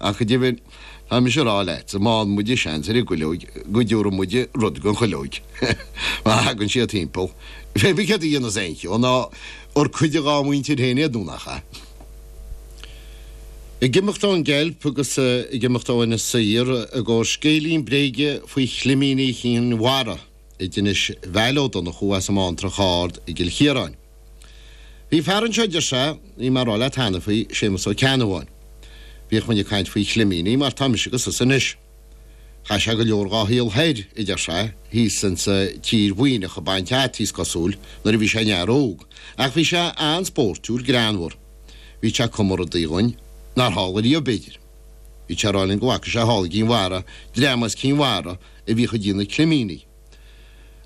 Ach go deimhin, tá mise a rá leat, má fhaigheann muide seans ar an gcuileog, go dtabharfaidh muid rud don chuileog. Má thagann siad timpeall, pé ar bith céard a dhéanfas aon cheann ná bhur cuid dhá mhuintir féin iad nó nach ea? Ag imeacht ón gceilp agus ag imeacht ó Inis Oírr i gcomhair scéilín bréige faoi chlimíní Chinn Mhara. anois Val Ó Donnchú as an mBantrach Ard i gCill Chiaráin. Bhí fear anseo a deir sé, bhí mé a rá leat cheana faoi, Séamus Ó Ceannabháin. Bhíodh muinn ag caint faoi chlimíní mar tá mise agus tusa anois. Chaith sé go leor dhá shaol thoir, a deir sé, thíos insa tír Mhuimhneach ag baint fhataí, is cosúil, nuair a bhí sé ina fhear óg. Ach bhí sé an-spóirtiúil, greannmhar. Bhíodh sé ag cumadh rudaí dhúinn nár tharla riamh, b'fhéidir. Bhíodh sé ag rá linn go bhfaca sé thall i gCinn Mhara, dream as Cinn Mhara, a bhíodh ag déanamh climíní.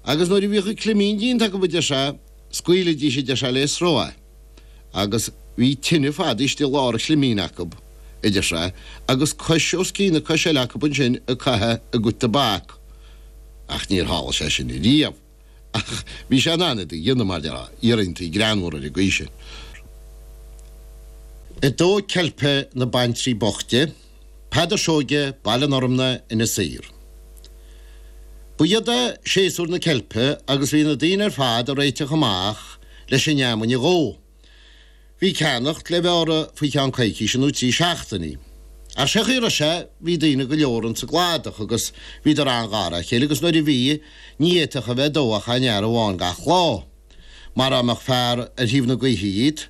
Agus nuair a bhíodh an climín déanta acu a deir sé, scaoilidís a deir sé le sruth é. Agus bhí tine fadaithe istigh i lár an chlimín acu, a deir sé, agus cois os cionn na coise eile acu ansin ag caitheamh a gcuid tobac. Ach níor tharla sé sin riamh. Ach bhí sé in ann iad a dhéanamh, mar a déarfá, iarrachtaí greannmhara ar an gcaoi sin. Dó ceilpe na baintrí boichte. Peadar Seoige, Baile an Fhormna, Inis Oírr. Ba shiod é séasúr na ceilpe agus bhí na daoine ar fad a réiteach amach leis an fheamainn a dhó. Bhí ceannacht le bheith orthu faoi cheann coicíse nó trí seachtainí. Ach sé chaoi a raibh sé bhí daoine go leor ins an gcladach agus bhíodar an-ghar a chéile agus nuair a bhí ní fhéadfadh a bheith dó ach aon fhear amháin gach lá. Mara mbeadh fear ar thaobh na gaoithe dhíot,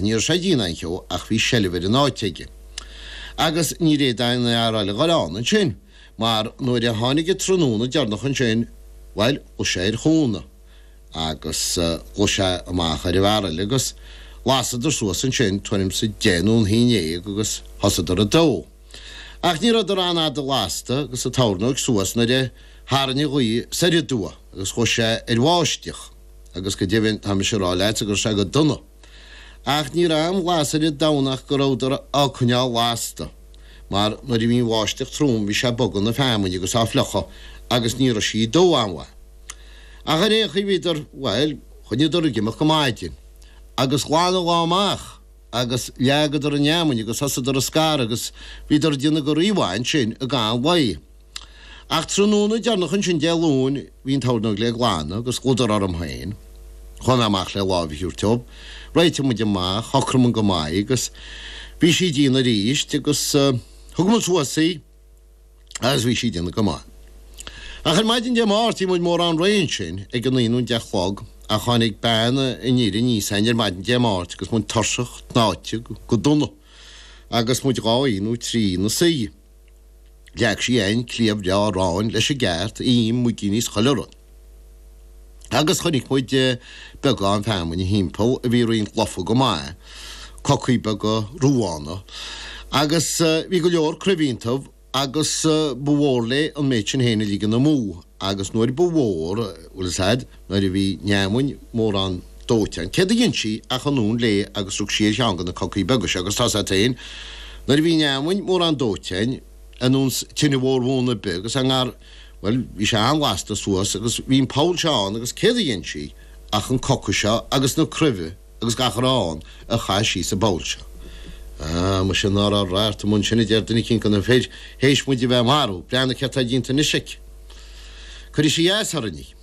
Ní raibh sé ag déanamh aon cheo ach bhí seilbh ar an áit aige. Agus níor fhéad aon fhear eile a ghoil ann ansin, mar nuair a tháinig an tráthnóna deireanach ansin, bhuel, ghluais sé ar chúnamh agus ghluais sé amach ar an bhfear eile agus lasadar suas ansin tuairim is a deich nó a haon ndéag agus thosadar ag dó. Ach ní rabhadar an-fhada lasta agus an tornóg suas nuair a tharraing an ghaoth soir aduaidh agus ghluais sé ar bháisteach. agus go deimhin tá mise a rá leatsa gur sea go dona, ach ní raibh aon bhlas ar an domhan ach go rabhadar á coinneáil lasta, mar nuair a bhí an bháisteach trom bhí sé ag bogadh na feamainne agus á fliuchadh agus ní raibh sí ag dó an-mhaith. Ach ar aon chaoi bhíodar, bhuel, choinníodar ag imeacht go maidin, agus ghlan an lá amach agus leagadar an fheamainn agus thosadar á scaradh agus bhíodar ag déanamh go rímhaith ansin i gcaitheamh an lae. Ach tráthnóna deireanach ansin Dé Luain bhí an tornóg le glanadh agus ghlaodar orm féin. Chuaigh mé amach le láimh Shiúr Tiub, réitigh muid amach, shocraigh muid go maith agus bhí sí dian arís agus thug muid suas í agus bhí sí dian go maith. Ach ar maidin Dé Máirt bhí muid mórán réidh ansin ag a naoi nó a deich a chlog ach tháinig bean an fhir aníos ann ar maidin Dé Máirt agus muid tuirseach, tnáite, go dona agus muid dhá oíche nó trí ina suí. Leag sí an cliabh Leá Ráin leis an gceart a dhéanamh muidí níos choille orainn. Agus chonaic muid beagán feamainne thimpeall a bhí roinnt lofa go maith, cocaí beaga ruánach, agus bhí go leor cruimh iontubh agus ba mhór léi an méid sin féin a ligean amú agus nuair ba mhór, bhfuil fhios a'd. nuair a bhí an fheamainn mórán dóite, céard a dhein sí ach anonn léi agus rug sí ar cheann de na cocaí beaga seo, agus tá sé féin. Nuair a bhí an fheamainn mórán dóite, dhein an uan tine mhór bhuan ar bith agus a ngar, bhuel, bhí sé an-ghasta suas agus bhí an poll seo ann agus céard a dhein sí ach an coca seo agus na cruimhe agus gach a raibh ann a chaitheamh síos sa bpoll seo. Ah, muise ná raibh radharc an uan sin, a deir duine eicínt de na fir, th'éis muid a bheith ag marú, breathnaigh céard atá déanta anois aici. Cuirfidh sí a fhios orainne.